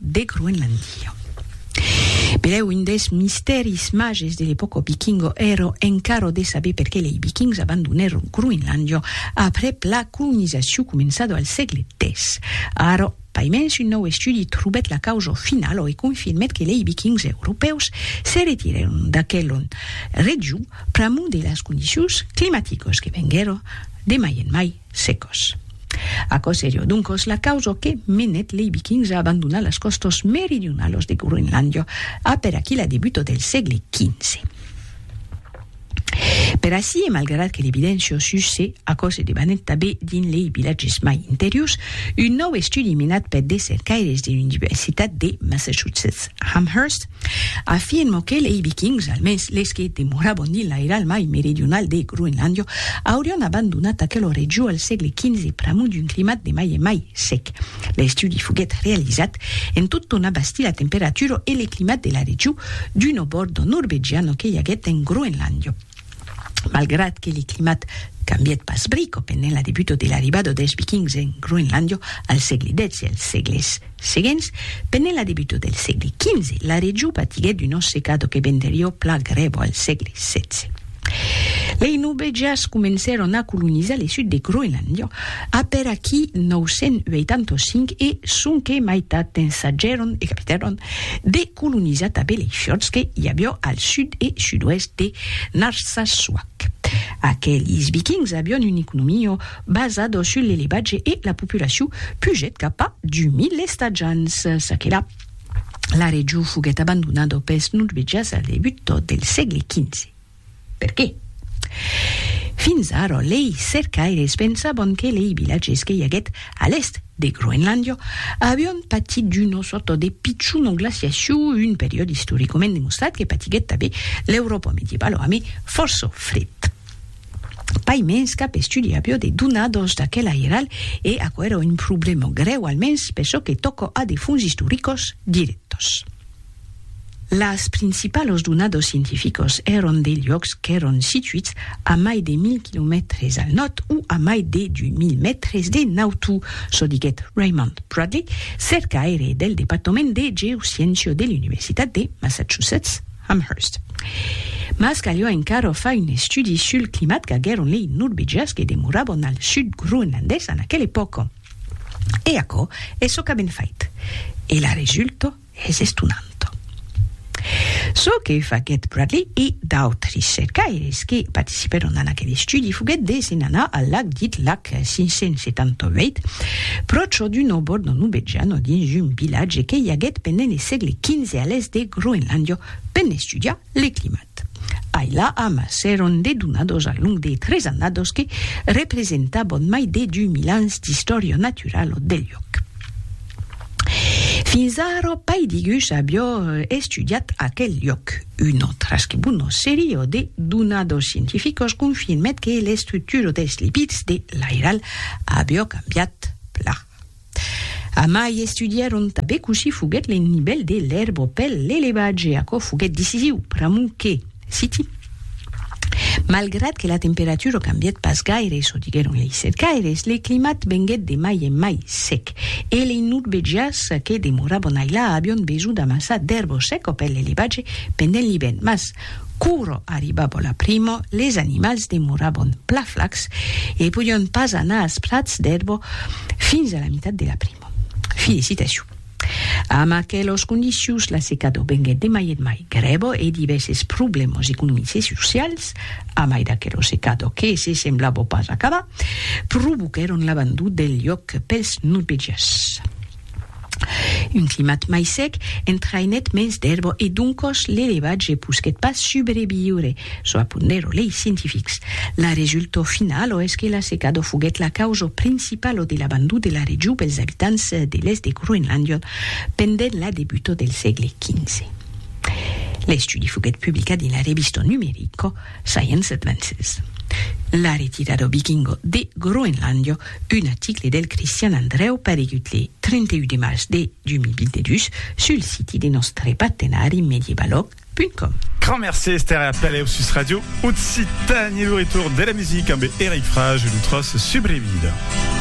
de Groenlandia. Benlèu un des mistèris mages de l'epòca vikinga èra encara de saber perqué lei vikings abandonèron Groenlandia aprèp la colonizacion començada al sègle X. Ara, paimens un nòu estudi trobèt la causa finala e confirmèt que lei vikings europèus se retirèron d'aquela region pr'amor de las condicions climaticas que venguèra de mai en mai secos. Aquò serió doncos la causa que menèt lei Vikings a abandonar las còstas meridionalas de Groenlàndia a per aquí la debuta del sègle XV. Per ací e malgrat que l'evidéncia sus se aquò se debanèt tabé dins lei vilatges mai interiors, un nòu estudi menat per de cercaires de l'Universitat de Massachusetts Amherst, Afirmo que lei Vikings, almens les que demoravan dins l'airal mai meridional de Groenlàndia, aurián abandonat aquela region al sègle XV pr'amor d'un climat de mai en mai sec. L'estudi foguèt realizat en tot ton abastir la temperatura e le climat de la region d'una borda norvegiana que i aguèt en Groenlàndia. Malgrat que le climat cambièt pas brico pendent la debuta de l'arribada dels Vikings en Groenlàndia al sègle xvi e als sègles seguents, pendent la debuta del sègle xv, la region patiguèt una secada que venderiá pla grèva al sègle xvi. Lei Norvegians comencèron a colonizar le sud de Groenlàndia après aquí 985 e sonque maitat d'ensajèron e capitèron de colonizat a Beleichotz que i avió al sud e sud-oèst de Narsassuaq. Aquelis vikings avión un economio basado sul l'elevatge e la populaciu pugèt cap a 2000 estatjants. Çaquelà, la region foguèt abandonado pels norvegias al debut del sègle xv. Perqué? Fins ara, lei cercaires pensavan que lei vilatges que i aguèt a l'èst de Groenlàndia avián patit d'una sòrta de pichona glaciacion, un periòde istoricament demostrat que patiguèt tanben l'Euròpa medievala amé fòrça fred. Pas mens cap estudi aviá de donadas d'aquel airal e aquò èra un problèma grèu, almens per çò que tòca a de fonts istoricas dirèctas. Las principalos donados scientificos èron de luòcs qu'èron situits a mai de 1.000 quilomètres al nòrd o a mai de 2.000 mètres de nautu, çò diguèt Raymond Bradley, cercaire del departament de geosciéncia de l'Universitat de Massachusetts Amherst. Mas caliá encara far un estudi sul climat qu'aguèron lei norvegians que demorabon al sud groenlandés en aquela epòca. E aquò es çò qu'avèn fait. E la resulta? Es estonant çò que faguèt Bradley e d'autres cercaires que participèron en aquel estudi foguèt de se'n anar al lac dit lac 578, pròche d'un òbor de Nubejano dins un vilatge que i aguèt pendent le sègle xv a l'èst de Groenlàndia, per n'estudiar le climat. Tat. Ai la am s'èron dedonados al long de tres annados que representabon mai de du mil ans d'istòria naturalo del lloc. Fins ara pai digus avió estudiat aquel lloc. Una trasquebuna seria de donados scientificos confirmèt que l'estructura dels lipids de l'airal avió cambiat plan. Amai estudièron tanben cossí foguèt l'ennivèl de l'èrbo pel l'elevatge, aquò foguèt decisiu pr'amor que, citi, Malgrat que la temperatura cambièt pas gaire, çò diguèron lei cercaires, le climat venguèt de mai en mai sec, e lei nordvegians que demorabon ailà avion besonh d'amassar d'èrbo seca pel l'elevatge pendent l'ivèrn, mas, Quoro arribavo la primo, les animals demorabon pla flacs e podion pas anar als prats d'erbo fins a la mitat de la primo. Filicitaciu. Amb aquelos condicions la secado venguet de mai et mai grèvo e divèses problèmos economics e socials, a mai d'aquelo secado que se semblavo pas acabar, provoquèron l'abandon del lloc pels norvegians. Un climat mai sec entraïnèt mens d'èrba e doncòs l'elevatge posquèt pas subreviure, çò apondèro lei scientifics. La resultau finala es que la secada foguèt la causa principala de l'abandon de la region pels abitants de l'èst de Groenlàndia pendent la debuta del sègle XV. L'estudi foguèt publicat dins la revista numerica Science Advances. La retirada vikinga de Groenlàndia un article del Cristian Andrèu paregut le 31 de març de 2022 sul siti de nòstre partenari mediebalog.com. Grand mercé Esther e a peleu sus Radio Occitanie, lo retorn de la musica ambe Eric Frage e lo tros Subrevida.